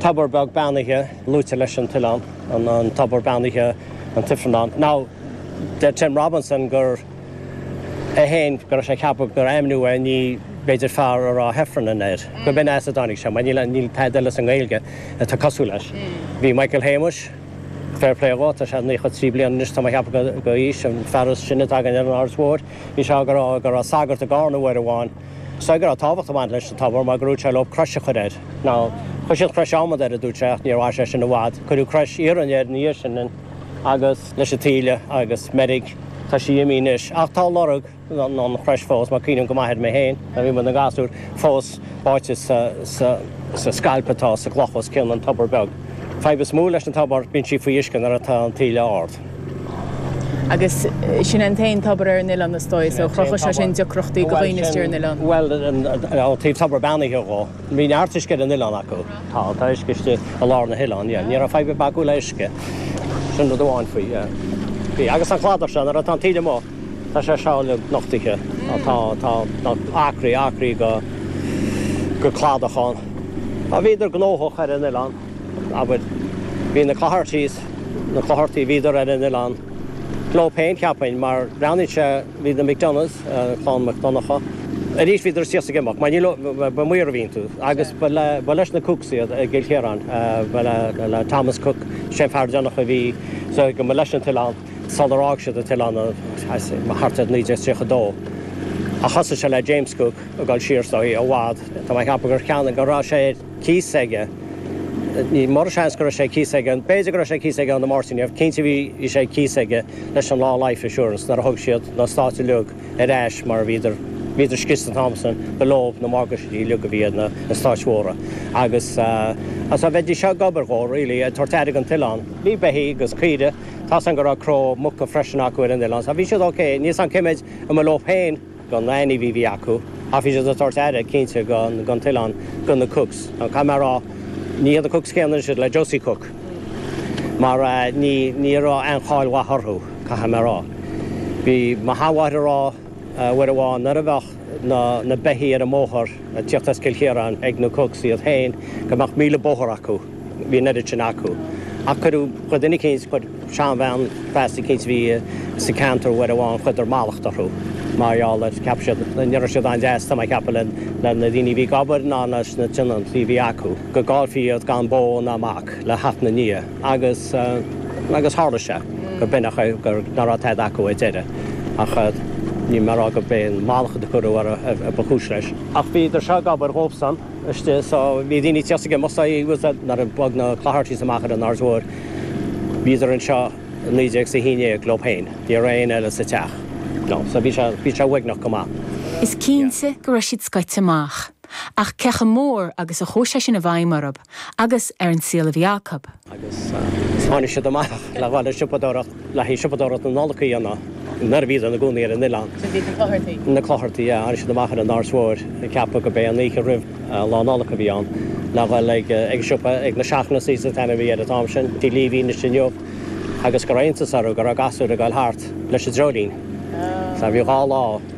Tobar beag beannaithe, luaitear leis an t-oileán an tobar beannaithe an tIfearnán. Now, deir Tim Robinson gur, go raibh sé ag ceapadh gur ainmníodh é, ní, b'fhéidir fearr a rá Heffernan air, gurb in as a dtáinig sé, mar níl, níl tada eile sa nGaeilge atá cosúil leis. Bhí Michael Shéamais, fair play dhó, tá sé 93 bliain anois, tá mé ag ceapadh gurb é an fear is sine atá againn ar an Aird Mhóir, bhí sé ag rá go raibh sagart i gCarna uair amháin, Sagart a raibh tábhacht ag baint leis an tobar mar gur dhúirt sé leo crois a chur air. Now, chuir siad crois adhmaid air, a dúirt sé, ach níor mhair sé sin i bhfad. Cuireadh crois iarainn air ina dhiaidh sin, agus leis an taoille agus meirg, tá sí imithe anois. Ach tá lorg an chrois fós, mar cuimhním go maith air mé féin nuair a bhí muid ina gasúir, fós báite sa scailp atá sa gcloch os cionn an tobair beag. fadhb is mó leis an tobar, bíonn sí faoi uisce nuair atá an taoille ard. Agus sin é an t-aon tobar ar an oileán is dóigh, so chruthaigh sé sin deacrachtaí go dhaoine istigh ar an oileán. Bhuel sin, bhuel ó thaobh tobar beannaithe dhó, bhí neart uisce ar an oileán acu. Tá, tá uisce istigh i lár na hoileáin, yeah, ní raibh fadhb ar bith acu le uisce, sin rud amháin faoi, yeah. Bhí, agus an cladach seo, nuair atá an taoille amuigh, Tá sé seo uilig nochtaithe. Tá acraí, acraí go cladach ann. Bhíodar gnóthach ar an oileán, abair. Bhí na Cloghertys, na Clogherty, bhíodar ar an oileán leo féin, cheapfainn, mar breathnaíonn sé, bhí na McDonaghs, clann Mac Donncha, arís bhíodar siúd ag imeacht, mar níl, ba maoir a bhí iontu agus ba leis na Cookes iad i gCill Chiaráin, ba le Thomas Cooke, sin fear deireanach a bhí, so go mba leis an t-oileán. sular fhág siad an t-oileán thart ar 1932. Ach thosaigh sé le James Cook ag dul siar sa i bhfad. Tá mé ag ceapadh gur cheannaigh, go raibh sé ar cíos aige, ní mor an seans go raibh sé ar cíos aige, b'fhéidir go raibh sé ar cíos aige ó na Máirtínigh, cinnte bhí sé ar cíos aige leis an Law Life Assurance nuair a thug siad na heastáit uilig ar ais mar bhíodar, bhíodar scriosta an t-am sin de bharr na morgáistí uilig a bhí ar na heastáit mhóra agus, agus bhídís seo ag obair dhó really, ag tabhairt aire don t-oileán. Bhí beithígh agus caoirigh. Tá seans go raibh cró muca freisin acu ar an oileán so bhí siad ok. Níl a fhios a'm cé mhéad a mba leo féin go na hainmhithe a bhí acu ach bhí siad ag tabhairt aire cinnte go an t-oileán go na Cooks. Now caithfidh mé a rá ní hiad na Cooks céanna anois iad le Josie Cook mar ní ní raibh aon cháil mhaith orthu caithfidh mé a rá. Bhí mo shean-mháthair ag rá. uair amháin nuair a bheadh na beithígh ar an mbóthar ag tíocht as Cill Chiaráin ag na Cooks iad féin go mbeadh míle bóthar acu, bhí an oiread sin acu. Ach chuir, chuir duine eicínt, chuir seanbhean feasa eicínt a bhí sa gceantar uair amháin, chuireadar mallacht orthu mar gheall air, cheap siad ní raibh siad an-deas, tá mé ag ceapadh, le na daoine a bhí ag obair ná leis na tionóntaí a bhí acu, go gcaillfí iad gan bó ná mac le theacht ina ndiaidh. agus agus tharla sé gur b'in nach raibh tada acu ar deireadh ach níl mé a rá gur b'é an mallachad a cuireadh orthu ba chúis leis. Ach bhíodar seo ag obair dhóibhsan istigh so bhí daoine ag tíocht aige so he was nuair a bhog na Clohertys amach ar an Aird Mhóir bhíodar anseo i naoi déag is a haon déag leob féin ní raibh aon eile sa teach so bhí sé bhí sé uaigneach go maith. Is cinnte go raibh siad scoite amach. Ach cé chomh mór agus a chuaigh sé sin i bhfeidhm orthu agus ar an saol a bhí acu? Agus tháinig siad amach le dhul ag siopadóireacht, le haghaidh siopadóireacht na Nollag a dhéanamh, nuair a bhíodar ina gcónaí ar an oileán. Sin iad na Clogherty? Na Clogherty, yeah. Tháinig siad amach ar an Aird Mhóir, ag ceapadh gurb é an oíche roimh Lá Nollag a bhí ann, le dhul ag an siopa, ag na Shaughnessys is an t-ainm a bhí air an t-am sin, tí Lee atá ansin inniu, agus go raibh iontas orthu go raibh gasúir ag goil thart leis an dreoilín. Sea, bhí dhá lá.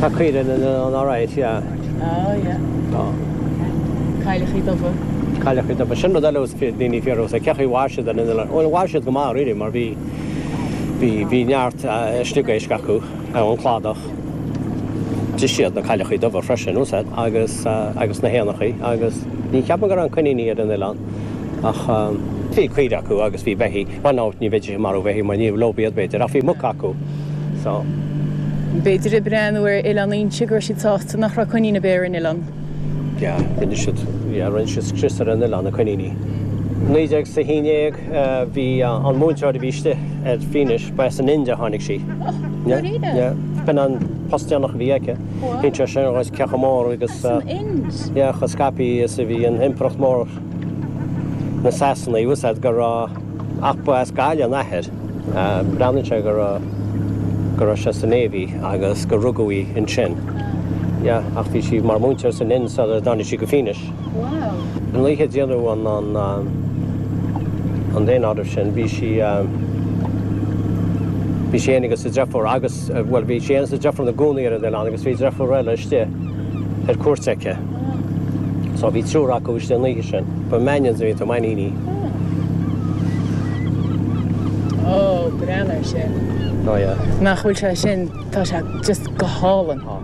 Tá caoireann in an RIC, yeah. Oh, yeah. Tá. Cailleachaí dubha. Cailleachaí dubha. Sin rud eile is daoine fíor os a cé chaoi ar mhair siad in an ó mhair siad go maith really mar bhí bhí bhí neart sliogéisc acu ar an gcladach. D'ith siad na cailleachaí dubha freisin is dóigh agus agus na héanachaí agus ní cheapaim gur fhan coiníní ar an oileán ach bhí caoire acu agus bhí beithí. Fan out, ní bheidís ag marú bheithígh mar ní lobh iad, b'fhéidir, ach bhí muca acu. So. B'fhéidir ag breathnú ar Oileán Fhínse go raibh siad sásta nach raibh coiníní ar bith ar an oileán. Yeah, rinne siad, yeah, rinne siad scrios ar an oileán, na coiníní. Naoi déag is a haon déag, bhí an múinteoir a bhí istigh ar Fhínis, ba as an Ind a tháinig sí. Yeah, oh, really? Yeah, b'in an post deireanach a bhí aici. Wow. Bhí sé sin cé chomh mór agus... As an uh, Ind? Yeah, chomh scaipthe is a bhí an impireacht mhór. na Sasanaigh, is dóigh go raibh ach ba as Gaillimh an athair. Breathnaíonn sé go raibh go raibh sé sa Navy agus gur rugadh í ansin. Yeah, ach bhí sí mar mhúinteoir san Ind sula dtáinig sí go Fínis. Wow! An oíche déanamh an an daonáirimh sin bhí sí bhí sí féin is a deirfiúr agus bhuel bhí sí féin is a deirfiúr ina gcónaí ar an oileán agus bhí deirfiúr eile istigh ar cuairt aici. So bhí triúr acu istigh an oíche sin. But Mannions a bhí orthu Mainníní. Oh, breathnaigh ar sin. Oh yeah. Nach bhfuil sé sin, tá sé just go hálainn. Tá.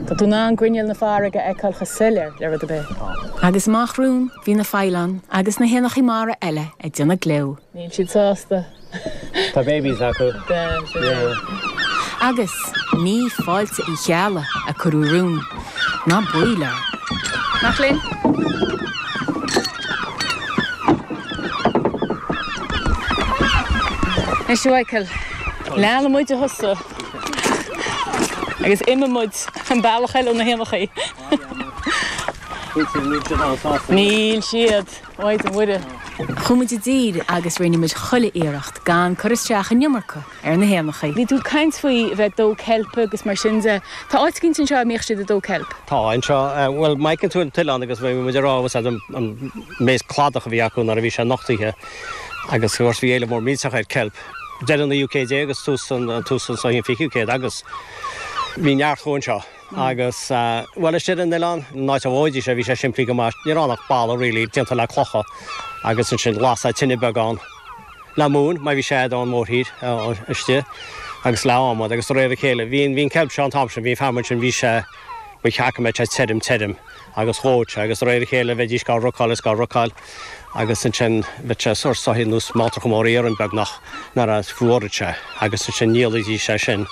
Tá tú in ann grinneall na farraige a fheiceáil chomh soiléir le rud ar bith. Tá. Agus amach romhainn, bhí na faoileáin agus na héanachaí mara eile ag déanamh gleo. Níl siad sásta. Tá babies acu. Agus ní fáilte Uí Cheallaigh a cuireadh romhainn ná baol air. Mac léinn? Ar several. Leanann muid thusa agus imíonn muid an bealach eile ó na héanachaí. Níl siad. Maide Muire. Chuaigh muid i dtír agus rinne muid chuile iarracht gan cur isteach an iomarca ar na héanachaí. Bhí tú ag caint faoi bheith ag dó ceilpe agus mar sin de. Tá áit éigin anseo a mbíodh siad ag dó ceilp? Tá, anseo. Bhuel, má fheiceann tú an t-oileán agus bhí muid ag rá, bhfuil fhios agat, an méid cladach a bhí acu nuair a bhí sé nochtaithe agus, of course, bhí éileamh mór millteach ar ceilp, deireadh an naoú céad déag agus tús an, tús an, so í an fichiú céad agus bhí neart acu anseo. Agus, bhuel, istigh ar an oileán, an áit a dhóidís é, bhí sé simplí go maith. Ní raibh ann ach balla, really, déanta le clocha. Agus ansin lasadh tine beag ann le móin, má bhí sé agat ón mórthír istigh, agus le adhmad, agus de réir a chéile. Bhí an ceilp seo an t-am sin, bhí an feamainn sin, bhí sé, ba cheart go mbeadh sé tirim, tirim. agus dhóití é, agus de réir a chéile bheidís gá rácáil is gá rácáil, agus ansin bheadh sé sórt soithí nó smáltracha móra iarainn beagnach nuair a fhuaródh sé, agus ansin dhíolaidís é sin.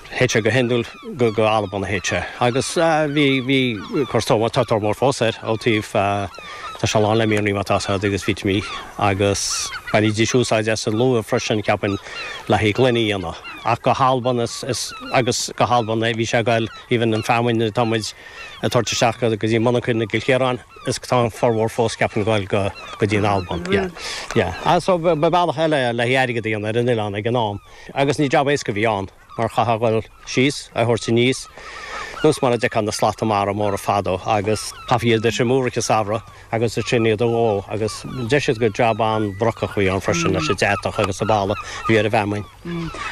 Théadh sé go hiondúil go go Albain a théadh sé, agus bhí, bhí course mar, tá tóir mhór fós air ó taobh, tá sé lán le mianraí mar atá fhios agat agus vitimí agus bhainidís úsáid as an luaith freisin cheapainn le haghaidh gloine a dhéanamh. Ach go hAlban is, is, agus go hAlban a bhí sé ag goil, even an feamainn atá muid, ag tabhairt isteach go dtí monarchan i gCill Chiaráin is tá an formhór fós cheapainn ag gabháil go dtí an Alban. Yeah. Yeah. Ah, so ba bealach eile é le hairgead a dhéanamh ar an oileán ag an am agus ní jab éasca a bhí ann mar chaithfeá a dhul síos, a thabhairt aníos nós mar a d'fheicfeá na slata mara móra fadó agus chaithfí iad a thriomú i gcaitheamh an samhradh. agus ansin iad a dhó agus deir siad gur jab an-bhrocach a bhí ann freisin leis an deatach agus an boladh a bhí ar an bhfeamainn.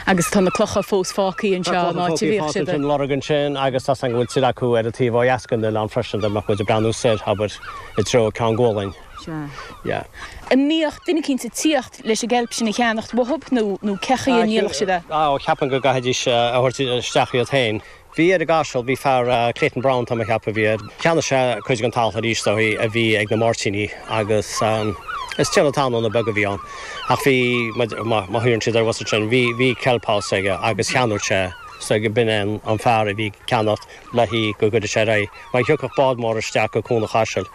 Agus tá na clocha fós fágthaí anseo, Tá clocha an áit a fágthaí bhíodh fós siad ar. an lorg ansin agus tá fhios agam go bhfuil tuilleadh acu ar an taobh ó dheas den oileán freisin dá mbeadh muid ag breathnú soir, abair, i dtreo Ceann Gualainn. Sea. Yeah. An mbíodh duine eicínt ag tíocht leis an gceilp sin a cheannacht uathub nó cé chaoi a ndíoladh siad é? Á, cheapainn go gcaithfidís a thabhairt isteach iad féin. bhí ar an gCaiseal, bhí fear, Clayton Browne tá mé a' cheapadh a bhí air, cheannaigh sé cuid den talamh aríst ó a bhí ag na Máirtíní agus is tiarna talúna beag a bhí ann ach bhí, mar a ghlaonn siad air, bhfuil fhios agat, sin, bhí, bhí kelp house aige agus cheannaíodh sé é, so b'in é an fear a bhí ag ceannacht le haghaidh go gcuireadh sé ar aghaidh Mar a thiocfadh bád mór isteach go Cuan an Chaisil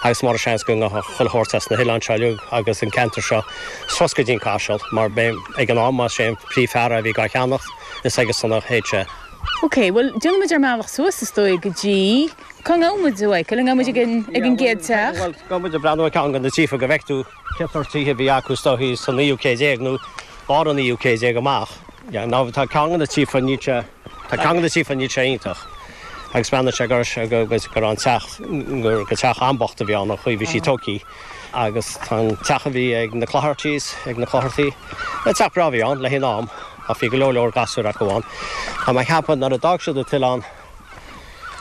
agus mar sin seans go ngabhfadh chuile shórt as na hoileáin seo uilig agus an ceantar seo suas go dtí an Caiseal, mar b'é, ag an am, ba é an príomhfhear a bhí dhá cheannacht, is aige san a théadh sé. OK, bhuel, déanfaidh muid ár mbealach suas, is dóigh, go dtí, cá ngabhfaidh muid a bhfeiceáil, an ngabhfaidh muid ag an gcéad teach? Bhuel, gabhfaidh muid ag breathnú ar cheann go na tithe go bhfeicfidh tú cén sórt tithe a bhí acu, is dóigh, sa naoú céad déag nó lár an naoú céad déag amach. Yeah, now tá ceann go na tithe, níl sé. Tá ceann go na tithe níl sé iontach agus bhreathnaigh sé go raibh an teach, gur teach an-bhocht a bhí ann, ón chaoi a bhí sé tógthaí agus tá an teach a bhí ag na Clohertys, ag na Clochartaigh, ba teach breá a bhí ann le haghaidh an am ach bhí go leor leor gasúir acu ann. Tá mé ag ceapadh nuair a d'fhág siad an t-oileán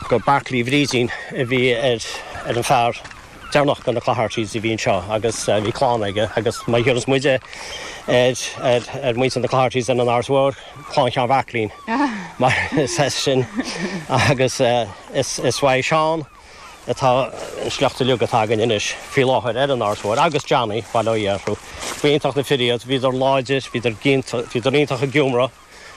gur Beartlaí Bhrídín a bhí ar an bhfear deireanach de na Cloicheartys a bhí anseo agus bhí clann aige agus má dhearcas muid ar mhuintir na Cloicheartys ar an Áras Mhór, clann Sheáin Bheachlín mar is as sin agus is ó Sheán atá an sliocht uilig atá againn anois faoi láthair ar an Áras Mhór agus Johnny, Baile Uí Fhearchair. Ba iontach na fir iad, bhíodar láidir, bhíodar iontach ag iomradh.